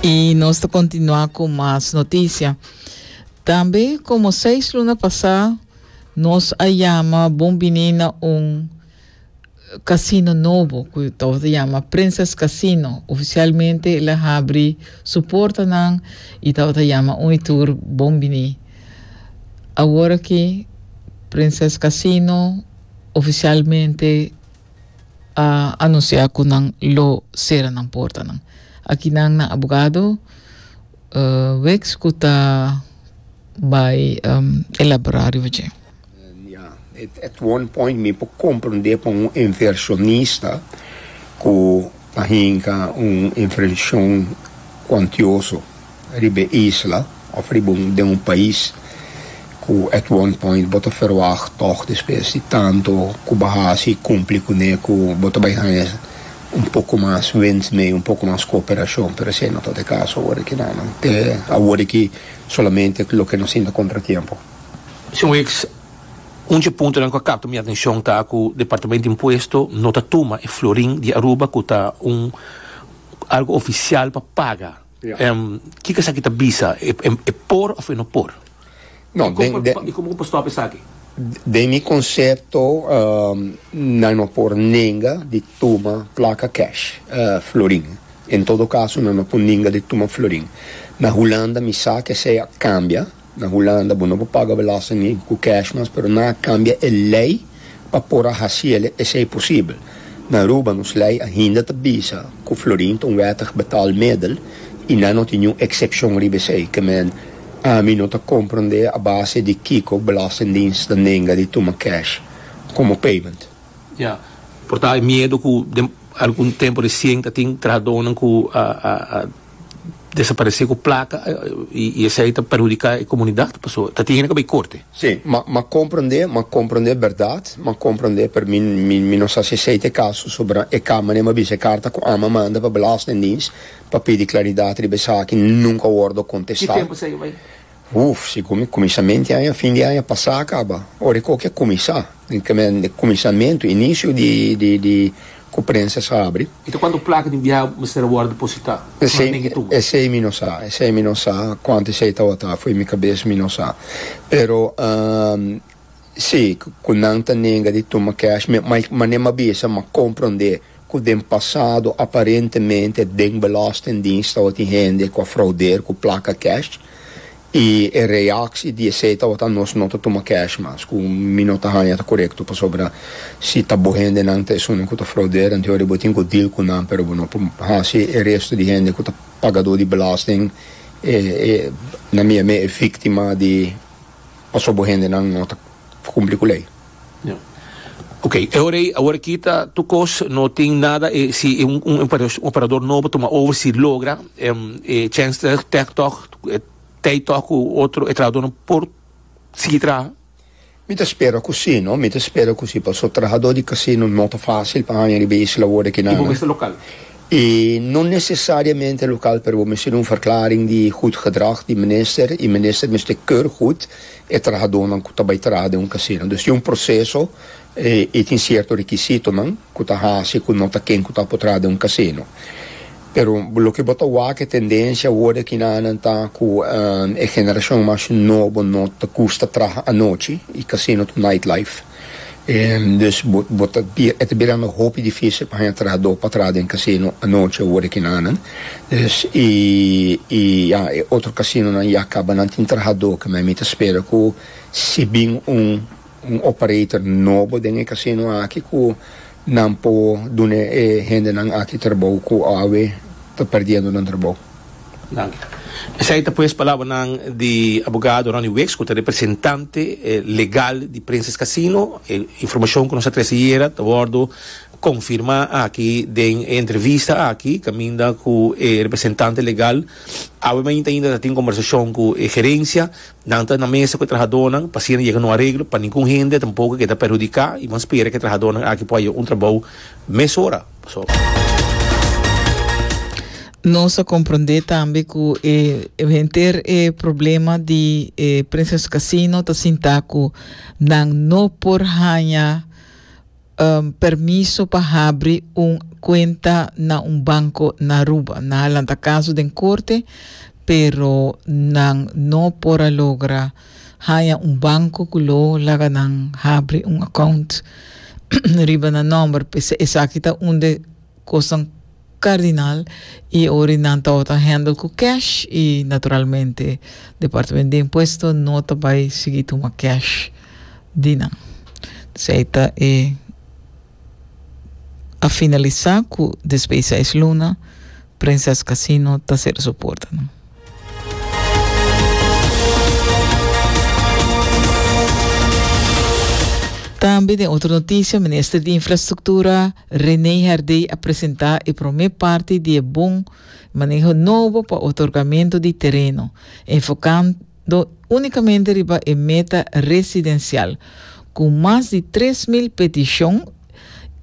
Y nos ta continua cu mas noticia. Tambe como seis luna pasa, nos a llama bon bini na un casino nobo cu tabata llama Princess Casino. Oficialmente el a habri su portanan y tabata llama un y tur bon bini. Awor aki Princess Casino oficialmente a anuncia cu nan lo cera nan portanan. Aki nan na abogado uh, Wicks cu ta bay um, elabora riba dje. Ja, at, at one point mi por comprende pa un inversionista cu ta hinca un inversion cuantioso. riba e isla of riba un den un pais ku at one point bo ta ferwagt tòg despues di tantu ku bo hasi i kumpli kuné ku bo ta bai haña un poko mas wens mee un poko mas kooperashon pero esei no ta e kaso aworiki no no te aworiki solamente loke no sinti kontratiempo. Señor Weeks, un dje puntonan ku a kapta mi atenshon ta ku Departamento di Impuesto no ta tuma e florin di Aruba ku ta un algu ofisial pa paga. Kiko esaki ta bisa? E por of e no por? I komo ku pa stòp esaki? Den mi konsepto nan no por nenga di tuma plaka kèsh florin. En todo kaso nan no por nenga di tuma florin. Na Hulanda mi sa ke esei a kambia. Na Hulanda bo no por paga belasting ni ku kèsh mas, pero nan a kambia e lei pa por a hasiel esei posibel. Na Aruba nos lei ainda ta bisa ku florin ta un wèttig betaalmiddel i nan no tin niun eksepshon riba esei. Ke men ami no ta komprondé a base di kiko Belastingdiens ta nenga di tuma kèsh komo payment. Ya, por ta e miedu ku den algun tempu resien ta tin trahadónan ku a desaparece cu placa y esey ta perhudica e comunidad paso ta tin hende cu bai corte. Si, m'a comprende, m'a comprende berdad, m'a comprende pero mi mi no sa si esey ta e caso soba e cama ni a bisa e carta cu ama manda pa belastingdienst pa pidi claridad riba esaki nunca a wordo contesta. Ki tempo esey a bai? Uf, si cu mi cuminsament di aña, fin di aña pasá a caba, ora e coki a cuminsá, den camen den cuminsamento, inicio di di di cu prensa sa abri. I ta cuantu placa di biaha mester a wordo depositá? Esey, Mantengi tucu. esey mi no sa, esey mi no sa cuantu esey tabata, fo'i mi cabes mi no sa, pero, ah, Sí, ku nan ta nega di tuma cash me, ma e manera ma bisa ma komprondé ku den pasado aparentemente den Belastingdienst tabatin hende ku a fraudeer ku plaka cash i e reaksie di esei tabata nos no ta tuma cash mas ku mi no ta haña ta korekto pasobra si ta bo hendenan ta esunnan ku ta fraudeer anto yori bo tin ku deal ku nan pero bo no por hasi e resto di hende ku ta pagadó di belasting e e na mia mei e víktima di Paso bo hendenan no ta cumpli cu ley. Ok, e ora ey, awor aki ta tur cos, no tin nada e si e un operador nobo tuma over si logra e chens ta tech tog, tey tog cu otro e trahadornan por sigui traha? Mi ta spera cu si, no, mi ta spera cu si, paso trahador di casino no ta facil pa haña riba e isla awor aki nan. Y bo mester local? E no nesesariamente lokal pero bo mester un verklaring di gud gedrag di minister i minister mester keur gud e trahadónan ku ta bai traha den un kasino. Dus tin un proseso i tin sierto rekisitonan ku ta hasi ku no ta ken ku ta por traha den un kasino. Pero loke bo ta wak e tendensia awor di akinanan ta ku e generashon mas nobo no ta gusta traha anochi i kasino ta un nightlife. Dus bo bo ta bira e ta birando hopi difísil pa haña trahadó pa traha den kasino anochi ora ki nanan dus i i ya e otro kasinonan ya kaba nan tin trahadó keme mi ta spera ku si bin un un operator nobo den e kasino aki ku nan por duna e hendenan aki trabou ku awe ta perdiendo nan trabou. Esei ta pues palabranan di abogado Ronnie Wicks cu ta representante legal di Princess Casino. E informacion cu nos a trece ayera ta wordo confirma aki den e entrevista aki caminda cu e representante legal awe mainta ainda ta tin conversacion cu e gerencia. Nan ta na mesa cu e trahadornan pa asina yega na un areglo pa ningun hende tampoco keda perhudica y bo a spera cu e trahadornan aki por hayo un trabao mesora. Nos a comprende tambe cu e henter e problema di e Princess Casino ta sinta cu nan no por haña um, permiso pa habri un cuenta na un banco na Aruba. Nan a lanta caso den corte, pero nan no por a logra haña un banco cu lo laga nan habri un account riba nan nomber p'esei esaki ta un de cosnan cardinal y ori nan tawata handle cu cash y naturalmente Departamento di Impuesto no ta bay sigui tuma cash di nan. Esei ta e. a finalisa ku despues seis luna Princess Casino ta sera su portanan. Tambe den otro notisia Minister di Infrastruktura Rene Herdey a presenta e prome parti di e bon maneho nobo pa otorgamentu di tereno, enfokan do únikamente riba e meta residensial, ku mas di tres mil petishon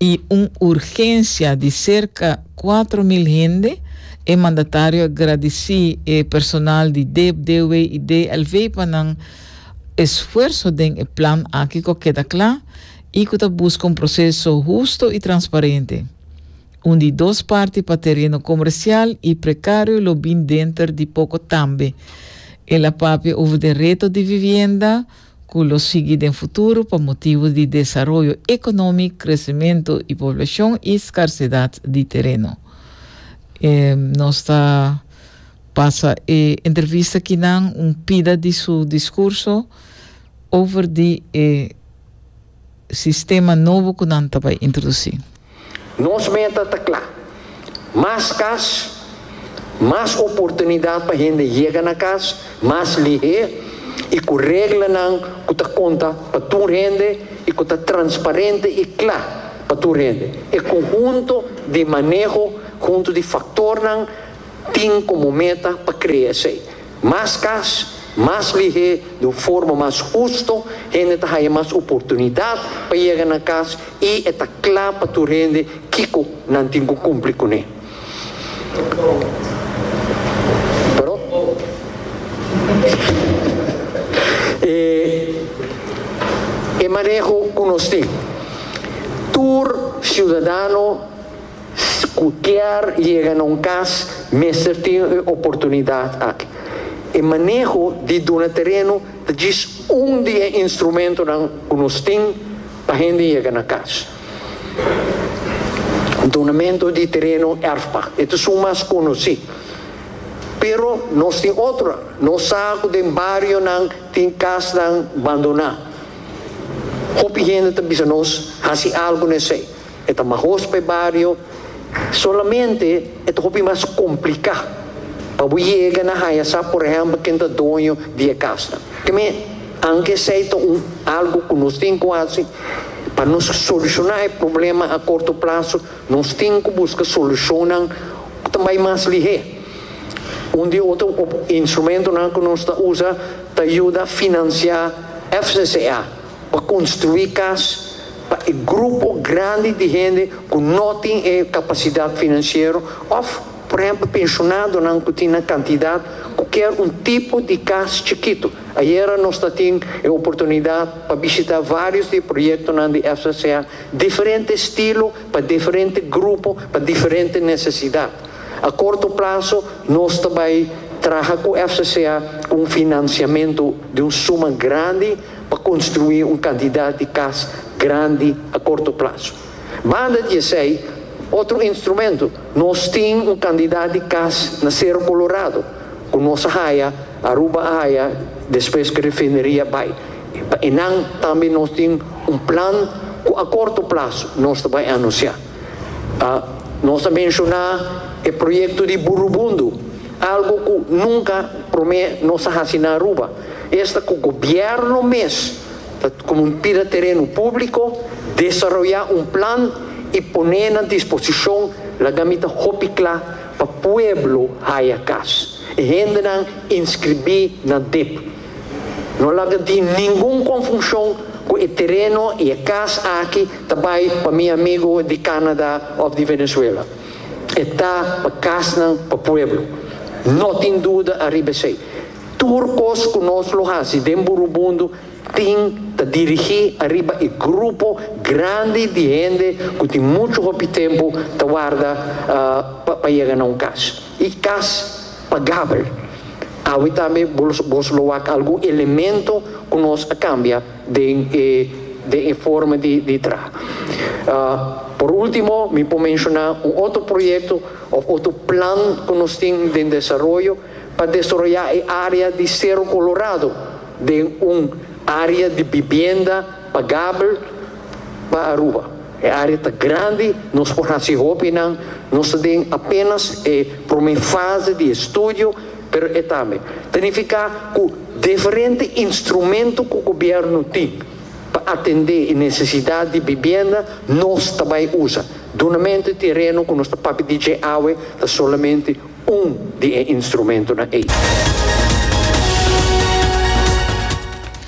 i un urgensia di serka kuatro mil hende, e mandatario a gradisí e personal di dep, DW i DLV pa nan esfuerso den e plan aki ku a keda kla i ku ta buska un proseso husto i transparente. Un di dos parti pa tereno comercial y precario lo bin denter di poco tambe. El a papia over den reto di vivienda cu lo sigui den futuro pa motibo di desaroyo economic, crecemento y poblacion y scarcedad di tereno. E nos ta pasa e entrevista aki nan un pida di su discurso over di e. sistema nobo ku nan ta bai introdusí. Nos meta ta kla, mas kas, mas oportunidat pa hende yega na kas mas lihé i ku reglanan ku ta konta pa tur hende i ku ta transparente i kla pa tur hende. E konhunto di maneho huntu di faktornan tin komo meta pa krea esei. Mas kas, mas lihé di un forma mas husto, hende ta haña mas oportunidat pa yega na kas i e ta kla pa tur hende kiko nan tin ku kumpli kuné. Pero, e e maneho ku nos tin, tur siudadano, Si cu kier yega na un cas, mester tin un oportunidad aki. E maneho di duna tereno ta djis un di e instrumentonan cu nos tin pa hende yega na cas. Donamento di tereno erfpa e ta sun mas conoci, pero nos tin otro. Nos sa cu den barionan tin casnan bandoná. Hopi hende ta bisa nos, haci algo na esey. e ta mahos pa e bario, solamente e ta hopi mas kompliká pa bo yega na haya sa por ehèmpel ken ta doño di e kasnan. Ke men, aunke esei ta un algu ku nos tin ku hasi, pa nos solushoná e problema a korto plaso, nos tin ku buska solushonnan ku ta bai mas lihé. Un di otro instrumentonan ku nos ta usa ta yuda finansiá FCCA. pa construi cas pa e grupo grandi di hende cu no tin e capacidad financiero of por ehemplo pensionadonan cu tin nan cantidad cu kier un tipo di cas chikito. Ayera nos ta tin e oportunidad pa bishita varios di e proyectonan di FCCA, diferente estilo pa diferente grupo pa diferente necesidad. A corto plazo nos ta bay traha cu FCCA cu un financiamento di un suma grandi. pa construi un cantidad di cas grandi a corto plazo. Banda di esey, otro instrumento, nos tin un cantidad di cas na Cerro Colorado cu nos a haya, Aruba a haya despues cu refineria bay. Pa enan tambe nos tin un plan cu a corto plazo nos ta bay anuncia. Nos a menshoná e proyekto di Burubundu, algu ku nunka promé nos a hasi na Aruba. Esta ku gobièrnu mes ta komo un pida tereno públiko, desaroyá un plan i pon'é na disposishon laga mi ta hopi kla pa pueblo haya kas. E hendenan inskribí na dip. No laga tin ningun konfushon ku e tereno i e kas aki ta bai pa mi amigu di Kanada òf di Venezuela. E ta pa kasnan, pa pueblo. No tin duda ariba esei. Tur kos ku nos lo hasi den Burubundu tin ta dirigí ariba e grupo grandi di hende ku tin muchu hopi tempu ta warda pa yega na un kas. i kas pagabel. Awe tambe bo bos lo wak algun elemento ku nos a kambia den e den e forma di di tra. Por ultimo mi por menshoná un otro proyekto òf otro plan ku nos tin den desaroyo pa desaroyá e área di Sero Kolorado den un área di bibienda, Pagabel pa Aruba. E área ta grandi, nos por hasi hopi nan. Nos ta den apénas e promé fase di e studio, pero e tambe ta nifiká ku diferente instrumentu ku gobièrnu tin pa atendé e nesesidat di bibienda nos ta bai usa. Dunamentu di tereno ku nos ta papia di dje awe ta solamente un di e instrumentunan ei.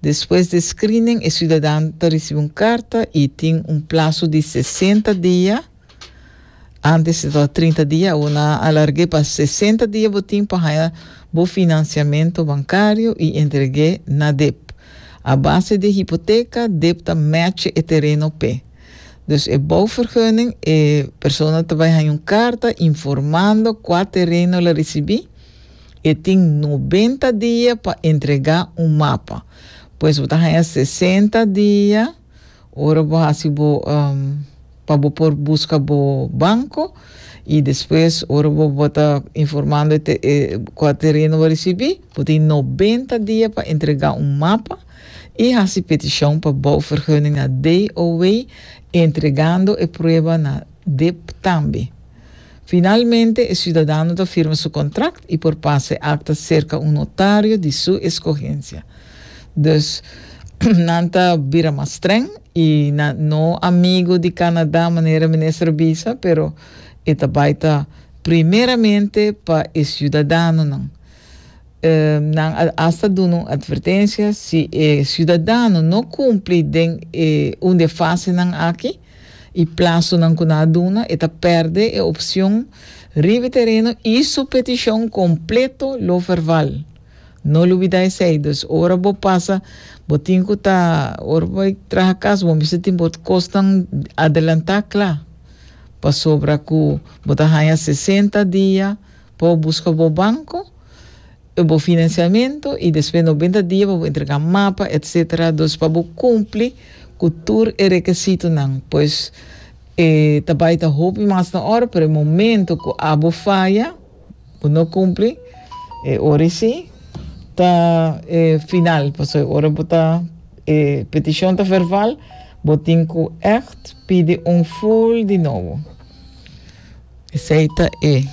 Despues di e screening e ciudadan ta ricibi un carta y tin un plazo di sesenta dia, antes estaba trinta dia awor nan a alargue pa sesenta dia bo tin pa haya bo financiamento bancario y entregue na dep. A base di e hipoteca dep ta matche e tereno pe. Dus e bouwvergunning e persona ta bay haya un carta informando cua tereno el a ricibi. E tin nobenta dia pa entregá un mapa. Pues bo ta haña sesenta dia ora bo hasi bo pa bo por buska bo banko i despues ora bo bo ta informando e kua tereno bo risibí, bo tin nobenta dia pa entregá un mapa i hasi petishon pa bouvergunning na DOW, entregando e prueba na dip tambe. Finalmente e siudadano ta firma su kontrakt i por pasa e akta serka un notario di su eskogensia. Dus nan ta bira mas streng i na no amigo di Canadá manera minister a bisa, pero e ta bai ta primeramente pa e siudadanonan. Nan a asta duna un atvertensia, si e siudadano no kumpli den e un di e fasenan aki, E plasonan ku nan a duna e ta pèrdè e opshon riba e tereno i su petishon kompleto lo verbal. No lo bida esei. Dus ora bo pasa bo tin ku ta ora bo bai traha kas bo mester tin bo kosnan adelantá kla pasobra ku bo ta haña sesenta dia pa bo buska bo banko. E bo financiamento y despues noventa dia pa bo entrega mapa etc. Dos pa bo cumpli cu tur e requisitonan. Pues e ta bay ta hopi mas na ora pero e momento cu abo faya, bo no cumpli, e ora esi ta e final pasobra e ora bo ta e peticion ta verbal bo tin cu echt pidi un full di nobo. Esey ta e.